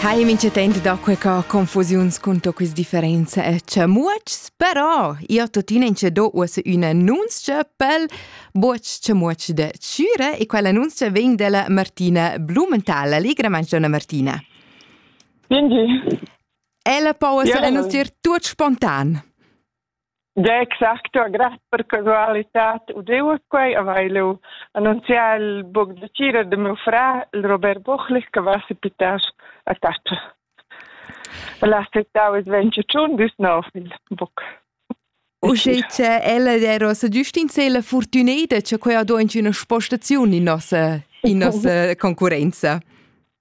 Hai mincha temp da quella confusiuns cun to quis differenza e chamuotschs, però io tuttina inche do uossa üna annunzia pel buoch chamuotsch de Chüre e quell'annunzia vegn della Martina Blumenthal. Allegra mangiona Martina. Quindi. Ella po uossa annunzier tuot spontan. Da exacto, gratt per casualitad udiu quei, haveva lu annunziau il buc da tgira de miu frar, il Robert Buchli, che vesi pitas a taccia. El ha citau il venture tschun dus nov il buc. Uschè che ella era sa giust in se la fortuneda che quei ha do in üna spostaziun in nossa in nossa concurenza.